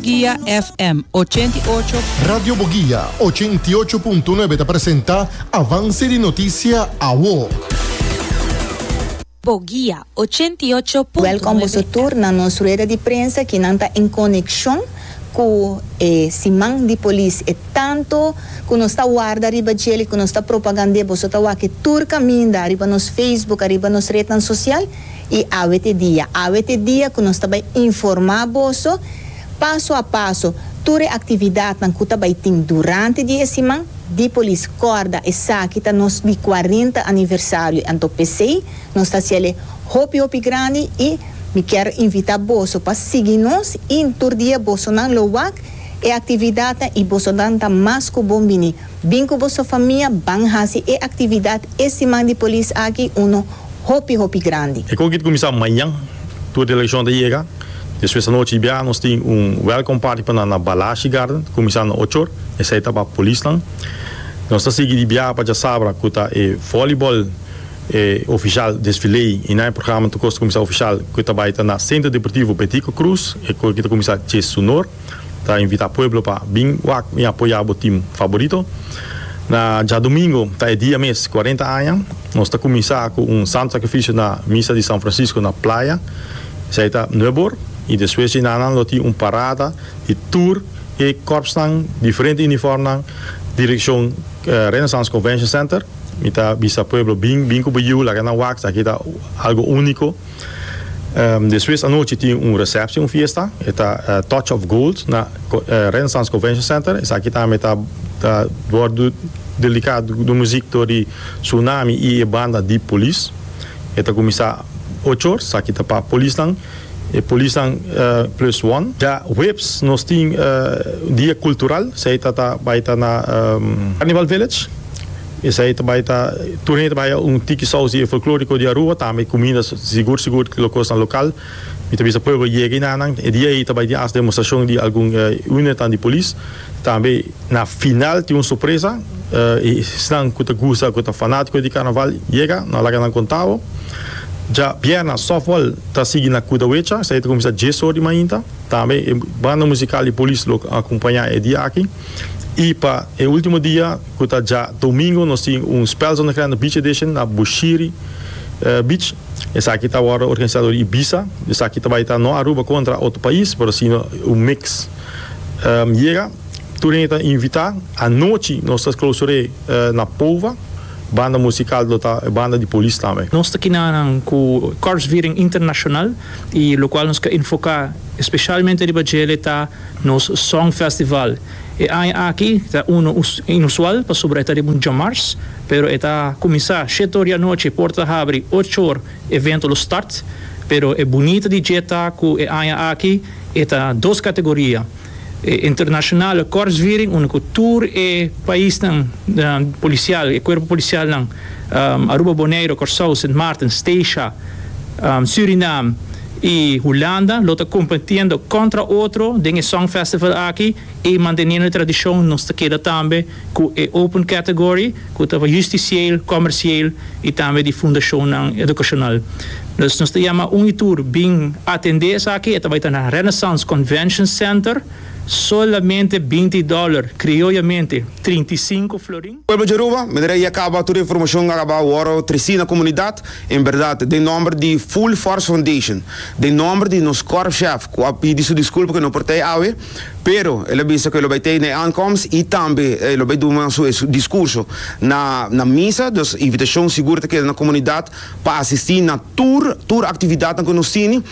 Guia FM ochenta i ocho. Radio Boguia ochenta i ocho punto nuebe ta presenta Avance di Noticia Awo. Boguia ochenta i ocho punto nuebe. Welkom boso tur na nos rueda di prensa ki nan ta en konekshon ku e siman di polis. E tantu ku nos ta warda riba djel i ku nos ta propagand'é, boso ta wak e tur kaminda riba nos Facebook, ariba nos retnan sosial. I awe t'e dia, awe t'e dia ku nos ta bai informá boso paso a paso tur e aktividatnan ku ta bai tin durante di e siman di Polis. Kòrda, esaki ta nos di kuarenta aniversario, anto p'esei nos ta hasiel e hopi hopi grandi i mi kier invitá boso pa sigui nos i tur dia bosonan lo wak e aktividatnan i bosonan ta mas ku bon bini. Bin ku boso famia ban hasi e aktividat e siman di polis aki uno hopi hopi grandi. E kogit kuminsá mañan tur delegashon ta yega. Despues anochi i bia nos tin un welcome party pa nan na Balashi Garden kuminsando na ochor. Esei ta pa polisnan. Nos ta sigui di bia pa djasabra ku ta e vòlibòl e ofishal desfilé i nan e programa ta kosta kuminsá ofishal ku ta bai ta na Centro Deportivo Betico Cruz e kogit ta kuminsá djes su nor. ta invita pueblo pa bin wak y apoya bo team faborito. Na djadomingo ta e dia mes cuarenta aña. Nos ta cuminsa cu un santo sacrificio na misa di San Francisco na Playa. Esai ta nuebe or y despues dje nan nan lo tin un parada di tur e corpsnan diferente uniformnan direccion Renaissance Convention Center. Mi ta bisa pueblo bin bin cu bo yiu laga nan wak esaki ta algo unico. Despues anochi tin un recepcion, un fiesta, e ta Touch of Gold na Renaissance Convention Center. Esaki tambe ta ta wordu dedica di muziek tur di Tsunami y e banda di Police. E ta cuminsa ocho or, esaki ta pa polisnan, e polisnan plus one. Ya huebs nos tin dia cultural, esaki ta ta bay ta na Carnival Village. Esei ta bai ta, tur hende ta bai a un tiki sousi e folkloriko di Aruba, tambe e kumida sigur sigur lo kosnan lokal. Mi ta bisa pueblo yega i na nan. E dia ei ta bai tin as demostrashon di algun unidadnan di polis. Tambe na final tin un sorpresa, esnan ku ta gusta, ku ta fanatiko di karnaval yega, no laga nan konta bo. Dja bierna softball ta sigui na Kudawecha, esei ta kuminsá dies or di mainta. Tambe e banda musikal di polis lo akompañá e dia aki. I pa e último dia. Cu ta dja domingo nos tin un Spel Zonnegrande Beach Edition na Bushiri Beach. Esaki ta wordo organisa door Ibiza. Esaki ta bay ta no Aruba contra otro pais, pero si un mix. Yega, tur hende ta invita. Anochi nos ta clausure na Pova. Banda musical lo ta e banda di Polis tambe. Nos ta kina nan cu Korpsviering International y locual nos ke enfoca especialmente riba djele ta nos Songfestival. E aña aki ta unu inusual pasobra e ta riba un djamars, pero e ta kuminsá shete or di anochi, port ta habri ocho or, evento lo start. Pero e bunita di dje ta ku e aña aki e ta dos kategoria, e internashonale kòrsviring unda ku tur e paisnan polisial, e kuerpo polisialnan, Aruba, Boneiru, Kòrsou, Sint Maarten, Steisha, Surinam, y Hulanda lo ta competiendo contra otro den e song festival aki y manteniendo e tradicion nos ta keda tambe cu e open category cu ta justicieel, comercieel y tambe di fundacionnan educacional. Dus nos ta yama un y tur bin atende esaki, e ta bay ta na Renaissance Convention Center, solamente binti dollar, crioyamente trinta y cinco florin. Pueblo di Aruba, mi ta reia caba tur e informacion a caba worde treci na comunidad, en berdad, den nomber di Full Force Foundation, den nomber di nos korpschef cu a pidi su disculpa cu e no por ta ei awe, pero el a bisa cu e lo bay ta ei na e aankomst y tambe e lo bay duna su e discurso na na misa, dus invitacion sigur ta keda na comunidad pa asisti na tur tur actividadnan cu nos tini,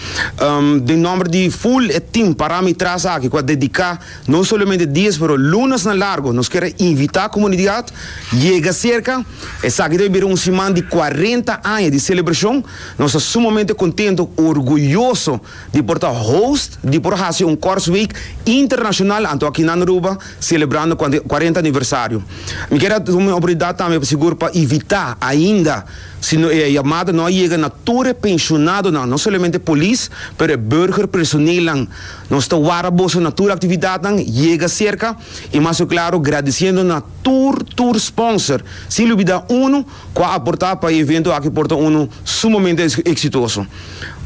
den nomber di full e team parami tras aki cu a dedica. No solamente dies pero lunas na largo nos kier a invita comunidad yega cerca esaki ta bai bira un siman di cuarenta aña di celebracion nos ta sumamente contento orguyoso di por ta host di por haci un Korsweek internacional anto aki nan Aruba celebrando cuarenta aniversario mi kier a tuma e oportunidad tambe pa sigur pa invita ainda si no e yamada no a yega na tur e pensionadonan no solamente polis pero e burger personeelnan. Nos ta wara boso na tur actividadnan, yega cerca y mas cu claro gradiciendo na tur tur sponsor, sin lubida uno cu a aporta pa e evento aki por ta uno sumamente exitoso.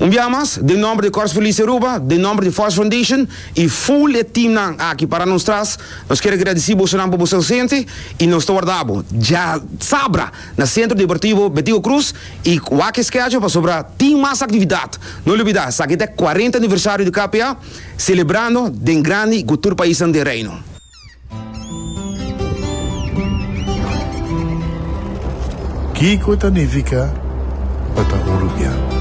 Un bia mas, den nomber di Corps Police Aruba, den nomber di Force Foundation y full e teamnan aki para nos tras, nos kier a gradici bosonan pa boso ausente y nos ta warda bo. Dja sabra! Na Sentro Deportivo Betigo Cruz y wak schedule pasobra tin mas actividad. No olbida esaki ta e cuarenta aniversario di KPA celebrando den grandi cu tur paisnan den Reino. Kico ta nifica pa ta Uruguiano?